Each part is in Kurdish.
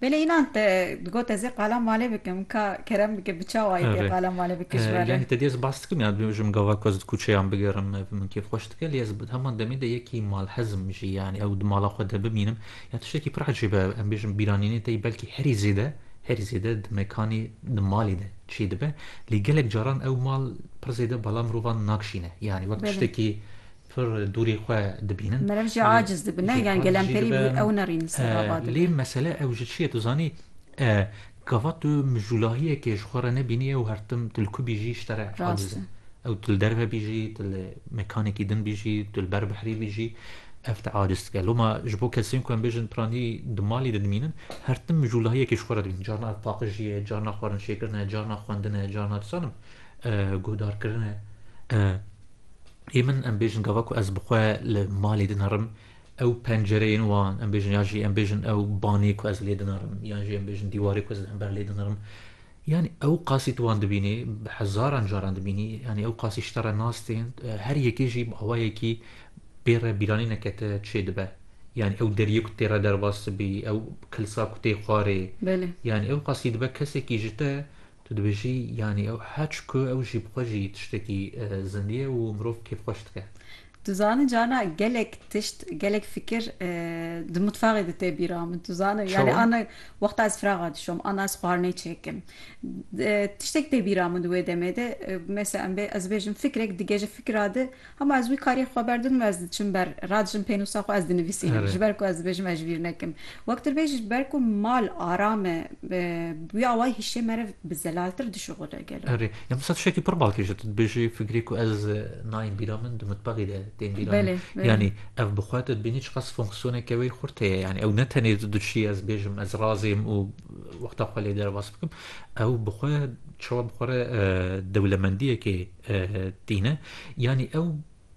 Belê înan te digot ez ê qala malê bikim ka kerem bike bi çawa yê tê qala malê bike ji berê. Yani te dê ez bas dikim ya ji min gava ku ez di kuçeyan bigerim ev min kêf xweş dike lê ez bi heman demê de yekî malhezim jî yani ew di mala xwe de bimînim ya tiştekî pir ecêb e em bêjin bîranînên te yî belkî herî zêde herî zêde di mekanê di malê de çê dibe lê gelek caran ew mal pir zêde bala mirovan nakşîne yani wek tiştekî Pir dûrê xwe dibînin. Meriv jî aciz dibe ne yan gelemperî bi wî ewna rîn ser re va dibe. Lê mesele ew ji çi ye tu zanî gava tu mijûlahiyekê ji xwe re nebînîye û her tim tu li ku bî jî ji te re aciz e. Ew tu li derve bî jî, tu li mekanekî din bî jî, tu li ber behrê bî jî ev te aciz dike. Loma ji bo kesên ku em bêjin piranî di malê de dimînin her tim mijûlahiyekê ji xwe re dibînin. Carna ev paqijî ye, carna xwarinçêkirin e, carna xwendin e, carna dizanim guhdarkirin e. Ê min em bêjin gava ku ez bi xwe li malê dinerim ew pencereyên wan em bêjin ya jî em bêjin ew banê ku ez lê dinerim yan jî em bêjin dîwarê ku ez li hember lê dinerim yanî ew qasî tu wan dibînî bi hezaran caran dibînî yanî ew qasî ji te re nas tên her yekê jî bi awayekî pê re bîranî neke te çê dibe yanî ew deriyê ku tê re derbas dibî ew kilsa ku tê xwarê yanî ew qasî dibe kesekî ji te Tu dibêjî yanî ew heç ku ew jî bi xwe jî tiştekî zindî ye û mirov kêf xweş dike. Tu zanî carna gelek tişt, gelek fikir di mutfaxê de tê bîra min. Tu zanî yanî ana wexta ez firaxa dişom, ana ez xwarinê çêkim. Tiştek tê bîra min di wê demê de. Mesela em bê ez bêjim fikrek dige ji fikra de. Hema ez wî karî xwe ber didim û ez diçim ber radiçim pênûsa xwe ez dinivîsînim ji ber ku ez dibêjim ez ji vîr nekim. Wek tu dibêjî ji ber ku mal aram e bi wî awayî hişê me re bi zelaltir dişuxule gelo. Erê ya misa tiştekî pir balkêş e tu dibêjî fikirî ku ez nayên bîra min di mitbexî de tên bîra min yanî ev bi xwe tu dibînî çiqas fonksiyoneke wê xurt heye yanî ew ne tenê tu diçî ez bêjim ez razêm û wexta xwe lê derbas bikim ew bi xwe çawa bi xwe re dewlemendiyekê tîne. Yanî ew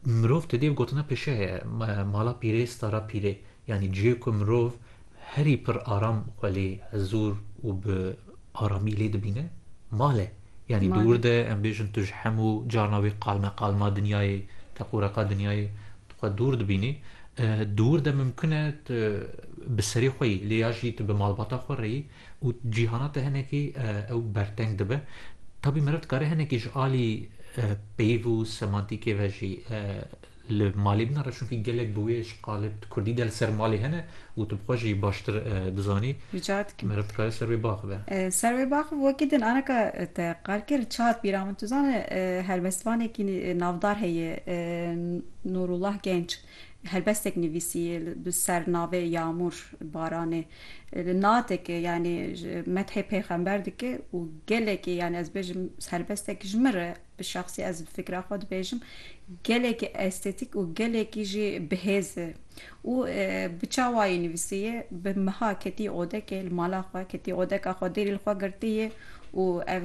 mirov tu dê bi gotina pişe ye, mala pîrê stara pîrê. Yanî cihê ku mirov herî pir aram xwe lê hezûr û bi aramî lê dibîne mal e. Yanî di wir de em bêjin tu ji hemû carna wê qalme qalma dinyayê, teqûreqa dinyayê tu xwe dûr dibînî. Di wir de mimkun e tu bi serê xwe yî lê ya jî tu bi malbata xwe re yî. Û cîhana te hinekî ew berteng dibe. Tabî meriv dikare hinekî ji alî peyv û semantîkê ve jî li malê binare çunkî gelek bi wê ji qalib di kurdî de li ser malê hene û tu bi xwe jî baştir dizanî. Rica dikim. Meriv dikare ser wê biaxive. Ser wê biaxive wekî din aneka te qal kir çad bîra min. Tu zane helbestvanekî navdar heye Nûrullah Genç. Helbestek nivîsîye bi ser navê Yamûr Baranê li nateke yanî methê pêxember dike û gelekî yanî ez bêjim helbestek ji min re bi şexsî ez bi fikra xwe dibêjim gelekî estetîk û gelekî jî bihêz e û bi çawayî nivîsîye bi miha ketîye odekê li mala xwe ketîye odeka xwe dêrî li xwe girtîye û ev